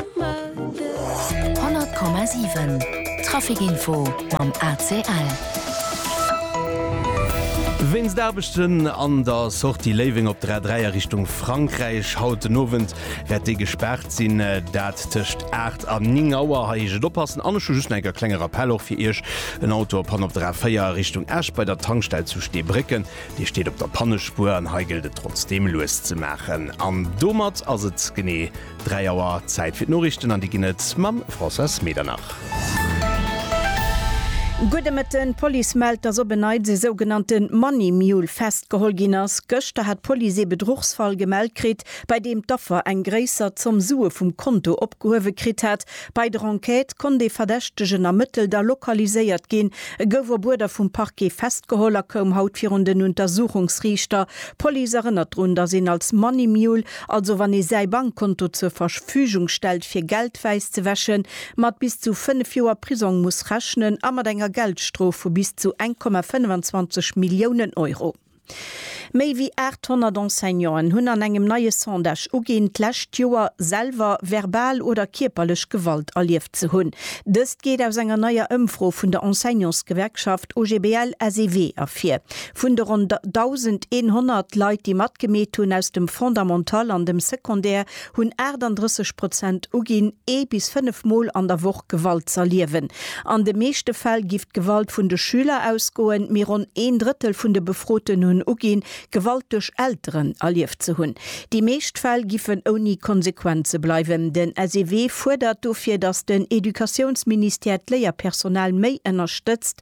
100,7 Trafic-Info mam ACL. Wéinst Aarbechten an der Sortie Léiweng op der A3 a Richtung Frankräich haut den Owend wäert déi gespaart sinn. Dat tëscht 8 an 9 Auer. Hei heescht et oppassen an ech hu just nach eng Kéier e klenge Rappell och fir Iech. En Auto a Panne op der A4 a Richtung Esch bei der Tankstell zu Steebrécken. Dee steet op der Pannespuer an hei gëllt et trotzdeem lues ze maachen. An domat ass et genee. 3 Auer, Zäit fir d'Noriichten an déi ginn et mam Françoise Medernach. Gudde Mëtten, D'Police mellt, dass op en Neits e sougenannte Money Mule festgeholl ginn ass. Gëschter hat d'Police ee Bedruchsfall gemellt kritt, bei deem d'Affer eng gréisser Zomm Sue vum Konto opgehuewe kritt hat. Bei der Enquête konnt ee Verdächtegen ermëttelt a lokaliséiert ginn. E gouf op Uerder vum Parquet festgeholl a koum haut virun den Untersuchungsriichter. D'Police erënnert drun, dass een als Money Mule also wann ee säi Bankkonto zur Verfügung stellt fir Geld wäiss ze wäschen, mat bis zu 5 Joer Prisong muss rechnen a mat enger Geldstrof vu bis zu 1,25 Milliounen Euro. Méi wéi 800 Enseignanten hunn an engem neie Sondage uginn, d'lescht Joer selwer verbal oder kierperlech Gewalt erlieft ze hunn. Dëst geet aus enger neier Ëmfro vun der Enseignantsgewerkschaft OGBL-SEW ervir. Vun de ronn 1.100 Leit, déi matgemeet hunn, aus dem Fondamental an dem Secondaire, hunn 38 Prozent uginn, ee bis fënnef Mol an der Woch Gewalt z'erliewen. An de meeschte Fäll giff d'Gewalt vun de Schüler ausgoen, mee ronn een Drëttel vun de Befroten hunn uginn, Gewalt duerch Elteren erlieft ze hunn. Déi meescht Fäll giffen ouni Konsequenze bleiwen. Den SEW fuerdert dofir, datt den Educatiounsministère d'Léierpersonal méi ënnerstëtzt,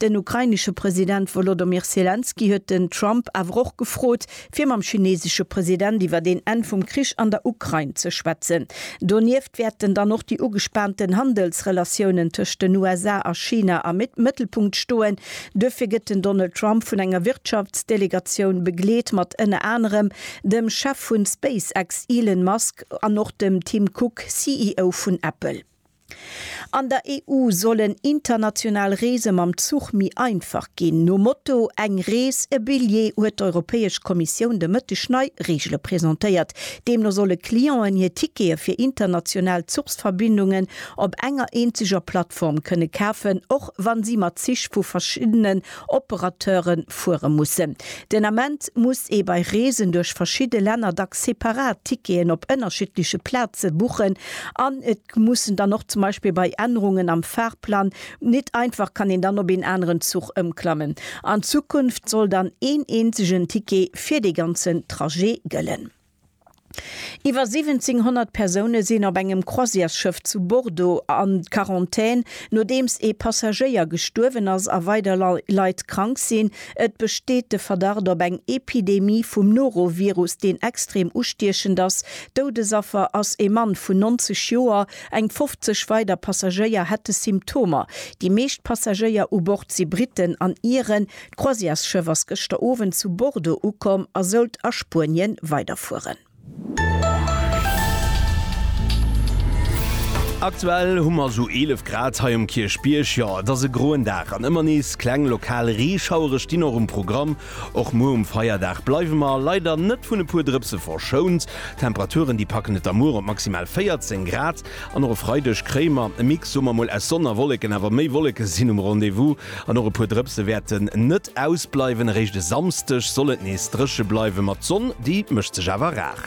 Den ukrainesche President Wolodomir Selenskyj huet den Trump awer och gefrot, fir mam chinesesche President iwwert een Enn vum Krich an der Ukrain ze schwätzen. Donieft wäerten dann och déi ugespaanten Handelsrelatiounen tëscht den USA a China am Mëttelpunkt stoen. Duerfir gëtt den Donald Trump vun enger Wirtschaftsdelegatioun begleet, mat ënner anerem dem Chef vu SpaceX Elon Musk an och dem Tim Cook, CEO vun Apple. An der EU sollen international Reese mam Zuch méi einfach ginn. Nom Motto Eng Rees, e Billjee huet d'Europäesch Kommissioun de Mëtteg nei Reegele presentéiert. Deemno solle Clienten hir Tickete fir international Zuchsverbindungen op enger eenzeger Plattform kënne kafen, och wa si mat Zich vu verschiddenen Operateure fuere mussen. Den Ament muss ee bei Reesen duerch verschidde Länner dacks separat Ticketen op ënnerschiddleche Plaze buchen an et. mussen dann och zum Beispill bei Ännerungen am Fahrplan nit einfach kann een dann op een aneren Zuch ëmklammen. An Zukunft soll dann een eenzegen Ticket fir dee ganzen Trajet gëllen. Iwwer 1700 Persoune sinn op engem Croisièresschëff zu Bordeaux an Quarantän, nodeems ee Passagéier gestuerwen ass a weider Leit krank sinn. Et besteet de Verdacht op eng Epidemie vum Norovirus, deen extrem ustiechend ass. Doudesaffer ass e Mann vun 90 Joer. Eng 50 weider Passagéier hätte Symptomer. Déi meescht Passagéier u Bord si Britten an Iren. D'Croisièresschëff ass gëschter Owend zu Bordeaux ukomm a sollt a Spuenien weiderfueren. Aktuell hu mer sou 11 Grad hei um Kierchbierg. Jo, et ass e groen Dag an ëmmer nees kleng lokal Reeschauere stinn och um Programm. Och muer um Feierdag bleiwe mer leider net vun e puer Drëpse verschount. D'Temperaturen, déi packen et da muer op maximal 14 Grad. An och e Freideg kréie mer e Mix, soe mer mol, aus Sonn a Wolleken, awer méi Wolleke sinn um Rendez-vous an och e puer Drëpse wäerten net ausbleiwen. Eréischt e Samsdeg soll et nees dréche bleiwen, ma d'Sonn, déi mécht sech awer rar.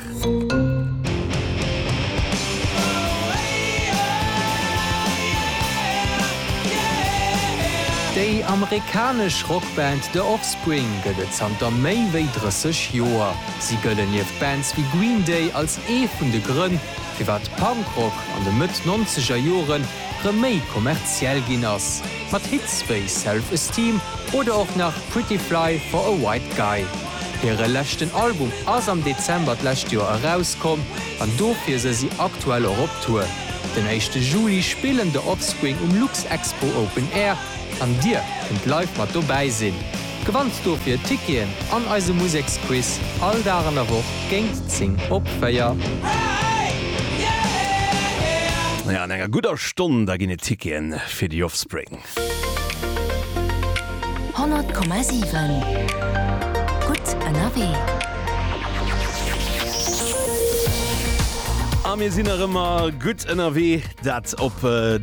Déi amerikanesch Rockband The Offspring gëtt et zanter méi wéi 30 Joer. Si gëllen nieft Bands wéi Green Day als ee vun de Grënn, firwat Punkrock an de Mëtt nonzeger Jore rëm méi kommerziell ginn ass, mat Hits wéi Self Esteem oder och nach Pretty Fly for a White Guy. Hire leschten Album ass am Dezember d'lescht Joer erauskomm an dofir se si aktuell och op Tour. Den éischte Juli spillen The Offspring um Luxexpo Open Air an dir kënnt live mat dobäi sinn. Gewanns dofir Ticketen an eise Museksquiz all Dag an der Woch géint 10 op 4. An enger gudder Stonn da ginn et Ticketen fir The Offspring. 100,7 gutt ënnerwee. A mir sinn nach ëmmer gutt ënnerwee, dat op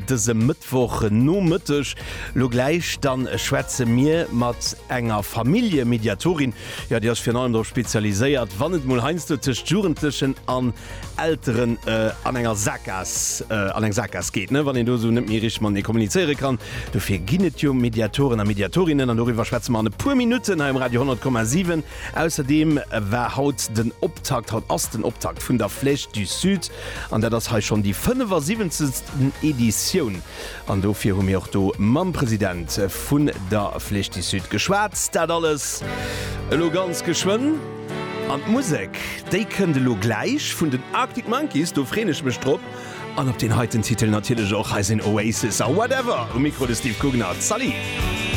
dësem Mëttwochnomëtteg. Lo gläich dann schwätze mir mat enger Familljemediatorin, jo, déi ass virun allem drop spezialiséiert, wann et mol heiansdo tëscht Jugendlechen an Elteren an enger Saakgaass, an eng Saakgaass geet, ne, wann een do esou net méi richteg matenee kommunizéiere kann. Dofir ginn et jo Mediatoren a Mediatorinnen an doriwwer schwätze mer an e puer Minutten hei um Radio 10,7. Ausserdeem war haut den Optakt, haut ass den Optakt vun der Flèche du Sud an dat ass hei schonn déi 75. Editioun. An dofir hu mir och do mam President vun der Flèche du Sud geschwat. Dat alles elo ganz geschwënn. An d'Musek, déi kënnt elo gläich vun den Arctic Monkeys, do freen ech mech drop. An op deen heiten Titel natierlech och. Hei sinn Oasis a Whatever um Mikro, de Steve Gugner. Salut!